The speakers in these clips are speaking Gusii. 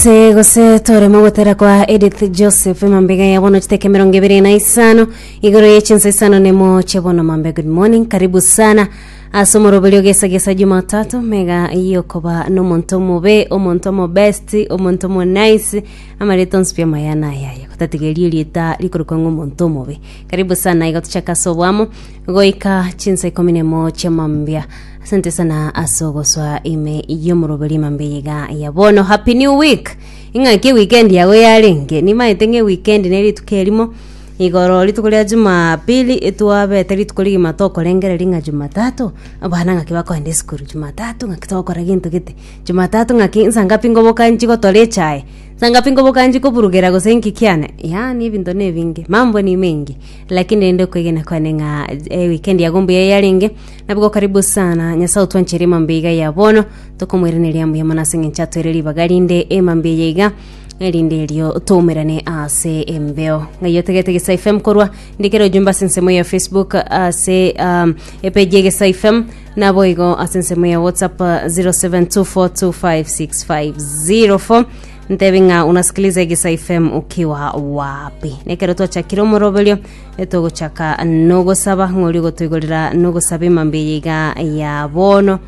Se gose toremo gotera kwa Edith Joseph mambega ya bono chiteke mirongo ibere na isano igoro ye chinsa isano nemo che bono mambe good morning karibu sana ase omoroberi ogesagesa jumatatu mega yokoba nomonto omobe omonto omobest omonto omonice amareto nsipia maya nayaye gotatigeria erieta rikorokwa ng'omonto omobe Karibu sana igo tuchaka ase obwamo goika chinsa ikomi nemo chiamambia asante sana ase ogoswa ime yomoroberi mambia yiga ya bono happy new week ing'aki weekend yago yarenge nimaete ng'e weekend ne rituko erimo igoro rituko ria jumapili etwabete rituko rigima tokorengereria ng'a jumatatu abana ng'aki bakoenda esukuru jumatatu ng'aki togokora gento gete jumatatu ng'aki nsa ngapi ngobokanchi gotore echae Sangapi nkobokanchia koburugera gose inki kiane? Yaani ebinto nebinge, mambo ni mengi. Lakini rende okwegena kwane ng'a eh, weekend yago mbuya yarenge, nabigo karibu sana. Nyasae otwancheria emambia iga ya bono, tokomoiraneria mbuya mono ase eng'encho atoire ribaga rinde emambia eye iga erinde erio toumerane ase embeo ng'ai otegete gesa fm korwa ndikere ojumbe ase ensemo ya facebook ase um, epeji egesa fm Naboigo ase ensemo ya WhatsApp 0724256504 ntebi ng'a unasikiliza Egisa FM ukiwa wapi. Nekero twachakire omoroberio etogochaka nogosaba ng'ori ogotoigorera nogosaba emambe eye iga ya bono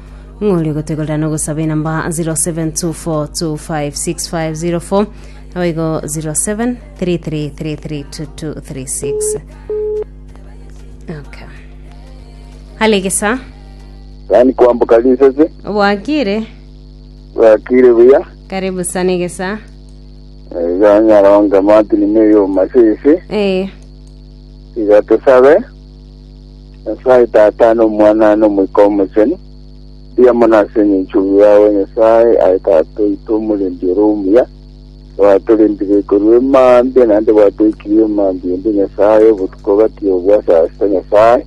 ng'ori ogotoigorera nogosaba enamba 0724256504 naboigo 0733332236 okay Alegesa. Yaani kwamboka risasi. Obwakire. Bwakire buya. Karibu sana egesa. Iga nyaronga Martin Meyo Masese. Eh. Iga tusabe. Nyasaye tata no mwana no moika omochenu. Bia monase ninchugu yawe Nyasaye aye tata oito omurindi oro omuya. Bwaturindire ikoru emambia naende bwatoikirie emambia ende Nyasaye obotuko gati obwasasa Nyasaye.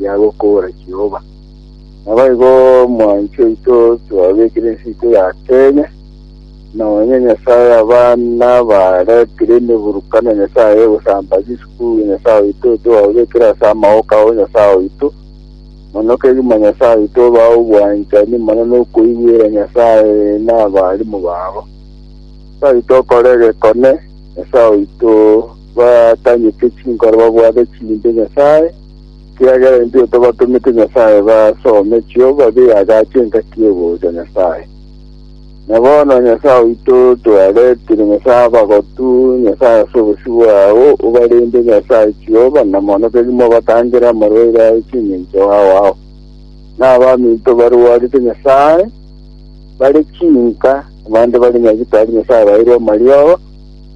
ya gokobora Jehova. Naboigo mwanchi oito twabekire ensiko ya Kenya, nonye Nyasae aba nabaretire emeburuka na Nyasae egosamba chisuku ya Nyasae oito twababekire ase amaoka ao Nyasae oito. Mono kegima Nyasae oito obae obwanchani mono nokoigwera Nyasae na abarimu babo. Nyasae oito okore egekone, Nyasae oito batanyeke chinkoro babwate chimbe Nyasae, Kiagera intwe tobatomete Nyasae basome chioba biagacha engaki y'ogocha Nyasae. Na bono Nyasae oito toaretire Nyasae abagotu, Nyasae ase obosio bwao obarende Nyasae chioba na mono keri mobatangere amarwaire aye chingencho aao. Na abaminto barwarete Nyasae, bare chinka, na bande bare nyagitari Nyasae baeirwe amarioba,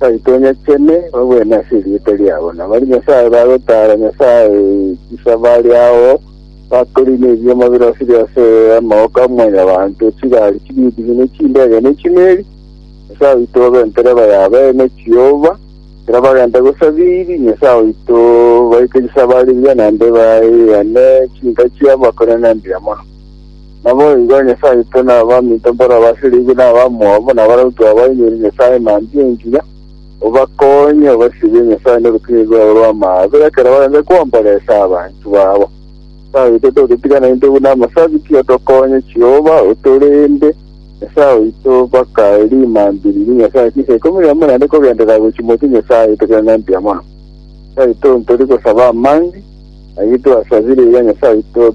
Baitonyechene, bagwene ase erieta riabo, na baria Nyasae bagotara Nyasae chisa bare ao, bakore nebioma birosire ase amaboko a mwanyabanto, chigari chibindibi, ne chindege, ne chimeri. Nyasae oito obe ntereba ya bene, Jehova, ekero bagenta gosabiri Nyasae oito, baike chisa bare mbuya, naende baeane chinka chiabo, bakore na mbuya mono. Naboigo Nyasae oito nabaminto mbore abasiriigwe na abamwabo, na barabwo twabainyoire Nyasae manchie engiya, obakonye obasirie Nyasae norukinyiri rwabo rw'amaabe, ekero barenge kwomboresa abanto babo. Nyasae oito tototigana intwe buna amasabiti, otokonye Jehova, otorende, Nyasae oito, mpaka rimambi riria Nyasae chinsa ikomi na imo naende kogenderera gochia motwe Nyasae oito kera nembuya mono. Nyasae oito ntori gosaba amambi, ayio twasabire iga Nyasae oito,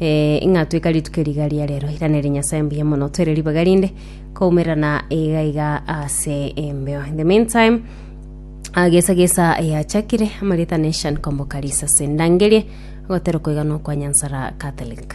Ee, ing'atweka rituko riga ria rero iranere Nyasae mbuya mono twere ribaga rinde koumerana iga iga ase embeo in the meantime agesa gesa yachakire amarita nation komboka risase ndangerie agotero koigana kwa nyansara catholic